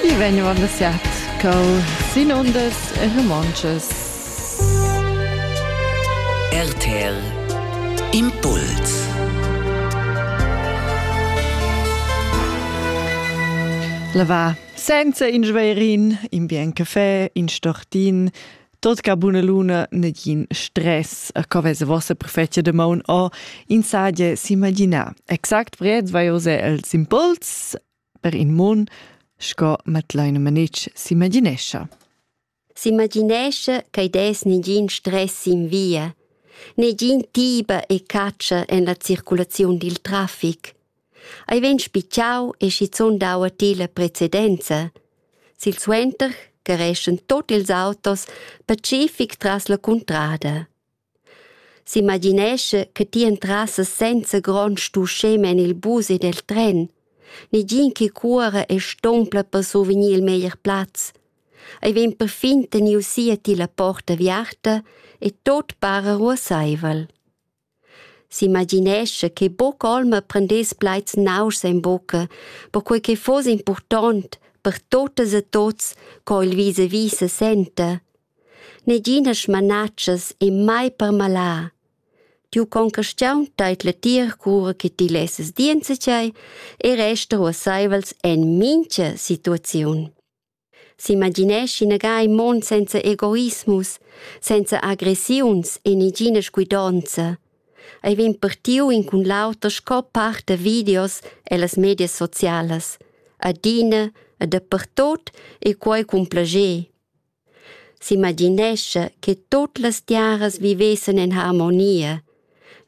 I vegnevan da siat col sin undas e romontschas. RTL Impuls La va senza in schverin, in bien café, in stortin, Tot ca buna luna nagin stress co vese vossa prefecia de maun o in sadie s'imaginar. Exact vred vai ose els impuls per in mon sco matleine manic s'imaginescha. S'imaginesce che des nigin stress in via, negin tiba e caccia en la circulazione dil traffic. ei vegn spitgau e schizun dau a ti la precedenza. Silsuenter carreschan tut ils autos pacific tras la cuntrada. S'imaginescha che ti entrassas senza grond stuschem en il bus ed el tren, negin che cuora e stompla per survegnir il meglier plaz. Ei vegn perfin teniu si a ti la porta aviarta e tot para ruasseivel. S'imaginescha che buca olma prendess plaids nauschs en bucca, perquei che fuss impurtont per tuttas e tuts co il vis-a-vis se senta. Neginas smanatschas e mai permalà. Tiu concastiun teit letir cura che ti lesses dir enzatgei e resta ruasseivels en mincha situaziun. S'imagineschi inagai mon senza egoismus, senza agressiuns e negina scuidonza. Ei vegn partiu in cun l'auter sco part da videos ellas medias socialas. Adina e dapertut e quei cun plager. S'imaginescha che tut las tiaras vivessen en harmonia.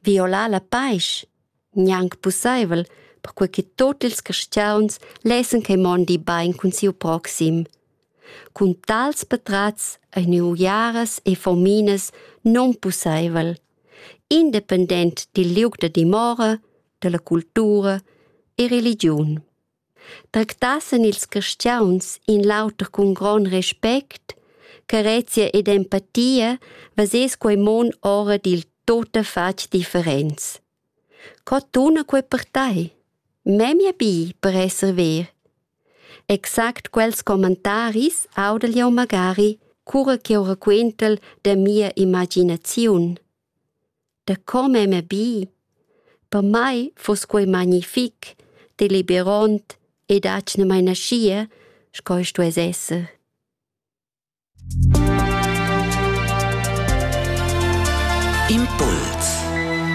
Violar la paisch. gnanc pussaivel, perquai che tut ils carstgauns lessen che mondi bain cun siu proxim. Cun tals patrats ein uiaras e fominas non pussaivel, independent dil liug da dimora, dalla cultura e religiun. Tractassan ils carstgauns in l'auter cun gron respect, carezia ed empatia, vesess quei mon ora dil tuttafatg differents. Co tuna quei per tei? Memia bi per esser ver. Exact quels commentaris audel jeu magari, cura ch'jeu raquentel da mia imaginaziun. Da come m'he bi. Per mai fuss quei magnific, deliberond ed atgnamain aschia sco ei stuess esser. Impuls